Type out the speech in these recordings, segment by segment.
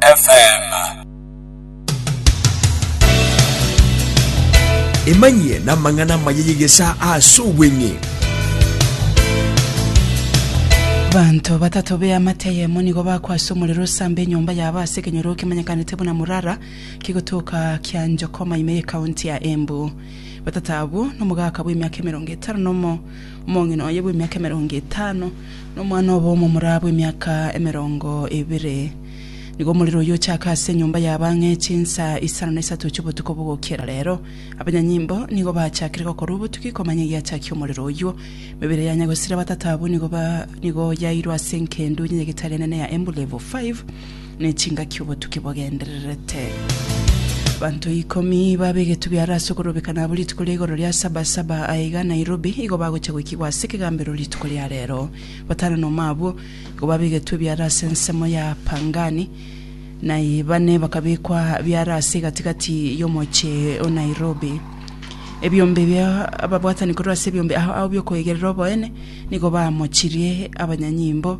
FM. Emanyie namang'ana amaya y'egesaa ase obweng'e. Abanto batato b'eamate eyemo nigo bakwa ase omorero osamba enyomba yabo ase ekenyoro kemanyekanete buna Murara kegotoka kia Njokoma ime y'ekaunti ya Embu. Batato abwo nomogaka bw'emiaka emerongo etano nomo Omong'ina oye bw'emiaka emerongo etano, na omwana obo omomura bw'emiaka emerongo ebere. Nigo omorero oyio ochake ase enyomba y'abang'e chinsa isano na isato chi'obotuko bogokera rero. Abanyanyimbo nigo bachakire gokorwa obotuki komanya egiachakia omorero oyio. Emebere ya nyagosira batata abwo nigo ba nigo yairwe ase enkendu y'Enyagetari enene ya Embu Level 5. ne chingaki obotuki bogendererete. Abanto ikomi babe egetubi are ase okorobeka nabo rituko ria igoro ria Sabasaba aye iga Nairobi igo bagocha goikigwa ase ekegambero rituko ria rero. Batano nomo abwo igo babe egetubi are ase ensemo ya Pangani, naye bane bakabekwa biare ase egati-gati y'omoche o Nairobi. Ebiombe bia ababwatani korwa ase ebiombe ao ao bi'okoigerera oboene nigo baamochirie abanyanyimbo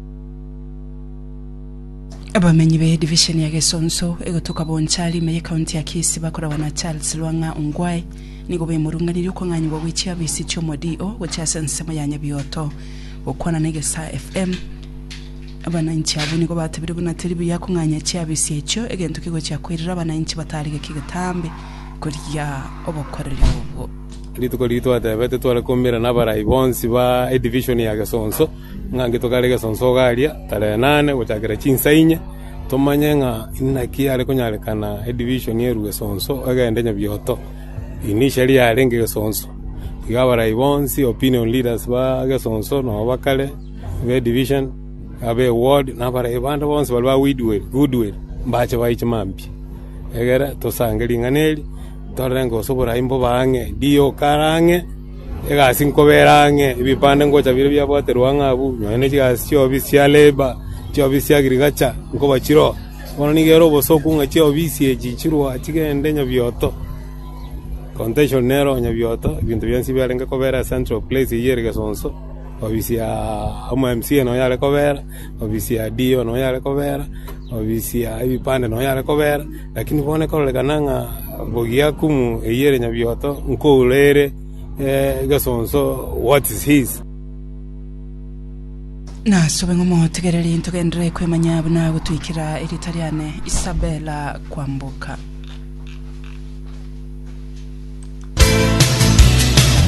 Abamenyi be division ya Gesonso egotoka Bonchari ime ye county ya Kisi bakoragwa na Charles Lwang'a Ongwae nigo bemorunganirie okong'anyigwa gwe chiafisi chi'omo DO gochia ase ensemo ya Nyabioto. Gokwana na Egesaa FM, abananchi abwo nigo batebirie buna teri buya kong'anya chiafisi echio egento kegochia koirera abananchi batarigeki getambe koria obokoreri obwo. Rituko riria twatebete tware koumera na abarai bonsi ba edivision ya Gesonso. Ng'a nki tokare gesonso ogaria tarehe nane gochakera chinsa inye, tomanye ng'a inaki yare konyarekana edivision erue gesonso egende nyebioto. Initially yarenge gesonso. Iga abarai bonsi, opinion leaders ba gesonso na ba kare, ba edivision, aba eward, na abarai bande bonsi baria ba weedwell, goodwill, mbache baye chimambia. Egere tosange ring'ana eri, torore ngose oborai mbobe ang'e, DO kare ang'e. Egasi nkobeera ang'e, ebipande ngocha bire biabwaterwa ng'a abwo, nonya ne chigasi chi'oofisi chia Labour, chi'oofisi chia Agriculture, nkobachiroa. Bono nigo ere obosoku ng'a chi'oofisi echi chirua chigende nyabioto. Contention nero nyabioto, ebinto bionsi biarenge kobeera central place eyio ere Gesonso, ofisi ya omo mca nonya are kobeera, ofisi ya DO nonya are kobeera, ofisi ya ebipande nonya are kobeera. Lakini bono ekororekana ng'a bogia kumu eyio ere nyabioto nkouro ere egesonso, What is his? Nasobe ng'a omotegererie ntogenderere kwemanya buna agotwikera erieta riane Isabella Kwamboka.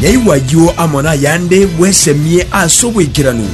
Nyaigwa ayio amo nayande bwesemie ase obwaikeranu.